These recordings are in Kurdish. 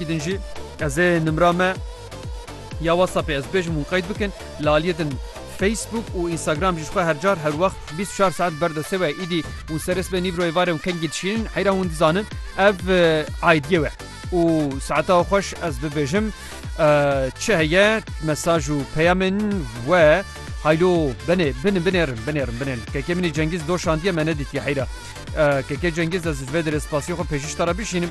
Wî din jî ez ê nimra me ya WhatsAppê ez bibêjim hûn qeyd bikin. Li aliyê din Facebook û Instagram jî ji xwe her car her wext bîst û çar saet li ber destê we ye. Îdî hûn serê sibê nîvrayê varê hûn kengî dişînin heyra hûn dizanin ev aîdiyê we û saeta xweş ez bibêjim çi heye mesaj û peyamên we haylo benê bin binêrin binêrin binêrin. Kekê min ê Cengîz doşandiye me nedîtiye heyra. Kekê Cengîz ez ji vê derê spasiyê xwe pêşîşta re bişînim.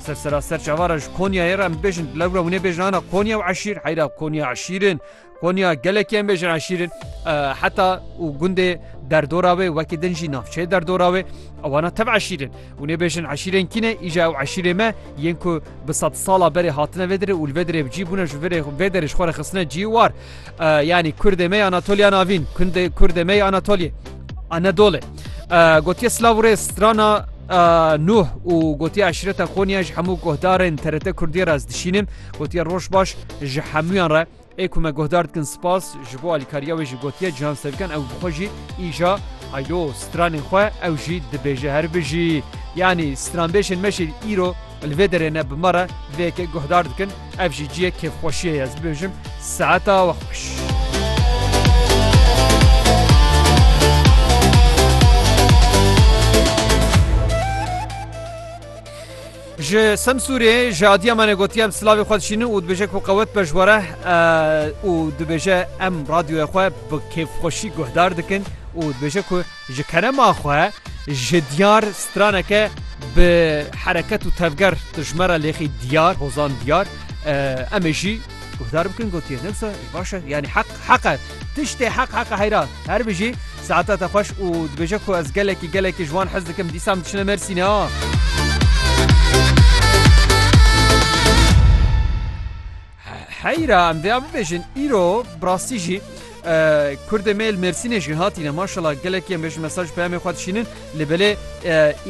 Sersera ser çava re ji Konyayê re em dibêjin di lewra hûnê bêjin ana Konya û eşîr heyra Konya eşîr in. Konya gelekî em bêjin eşîr in heta û gundê derdora wê wekî din jî navçeyê derdora wê ewana tev eşîr in. Hûnê bêjin eşîrên kî ne îja ew eşîrê me yên ku bi sed sala berê hatine vê dirê û li vê dirê bi cî bûne ji vê derê ji xwe re xistine cî war. Yanî Kurdê me ya Anatoliya Navîn, Kundê Kurdê me ya Anatoliyê, Anadolê. Gotiye Slav û Rêz strana Nuh û gotiye eşreta Xoniya ji hemû guhdarên TRT Kurdiyê re ez dişînim. Gotiye roj baş ji hemûyan re. Ê ku me guhdar dikin spas ji bo alîkariya wê jî gotiye Cihan Sevken ew bi xwe jî îja haylo stranên xwe ew jî dibêje her bijî. Yanî stranbêjên me jî îro Li vê derê ne bi me re vê yekê guhdar dikin, ev jî ciyê kêfxweşiyê ye, ez bibêjim saeta we xweş. Ji Semsûrê ji Adiyamanê gotiye em silavê xwe dişînin û dibêje ku qewet be ji we re û dibêje em radyoya xwe bi kêfxweşî guhdar dikin û dibêje ku Ji kerema xwe ji diyar straneke bi hereket û tevger dijmera lêxî diyar hozan diyar em ê jî guhdar bikin gotiye ne wisa başe yanî heq heqe tiştê heq heqe heyra her bijî saeta te xweş û dibêje ku ez gelekî gelekî ji wan hez dikim dîsam diçine mersîne ha. Heyra em vêya bibêjin îro bi rastî jî Kurdê me li Mêrsînê jî hatîne maşallah gelekî em bêjin mesaj peyamê xwe dişînin li belê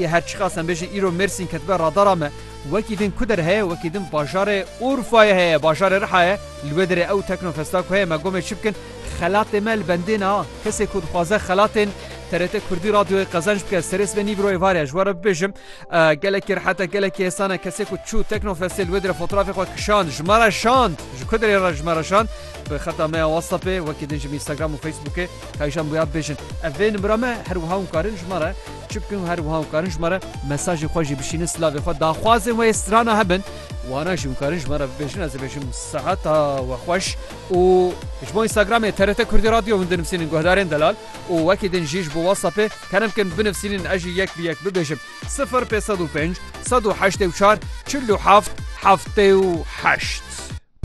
ê her çiqas em bêjin îro Mêrsîn ketibe radara me wekî din ku der heye wekî din bajarê Urfayê heye bajarê Riha ye li wê derê ew teknofesta ku heye me gomê çi bikin xelatê me li bendê ne kesê ku dixwaze xelatên TRT Kurdî radyoyê qezenç bike serê sibê nîv îro êvar ye ji we re bibêjim Gelekî rihete gelekî hêsan e kesê ku çû Teknofestê li wê dire fotrafê xwe kişand ji me re şand ji ku dirê re ji me re şand bi xeta me ya WhatsAppê wekî din ji min Instagram û Facebookê kayijan bûya bibêjin ev vê nimira me her wiha hûn karin ji me re çi bikin û her wiha hûn karin ji me re mesajê xwe jî bişînin silavê xwe daxwazên wê strana hebin wana jî hûn karin ji me re bibêjin ez dibêjim seheta we xweş û ji bo Instagramê TRT Kurdî Radyo hûn dinivîsînin guhdarên delal û wekî din jî ji bo WhatsAppê kerem kin binivsînin ez jî yek bi yek bibêjim. Sifir pêz sed û pênc sed û heştê û çar çil û heft heftê û heşt.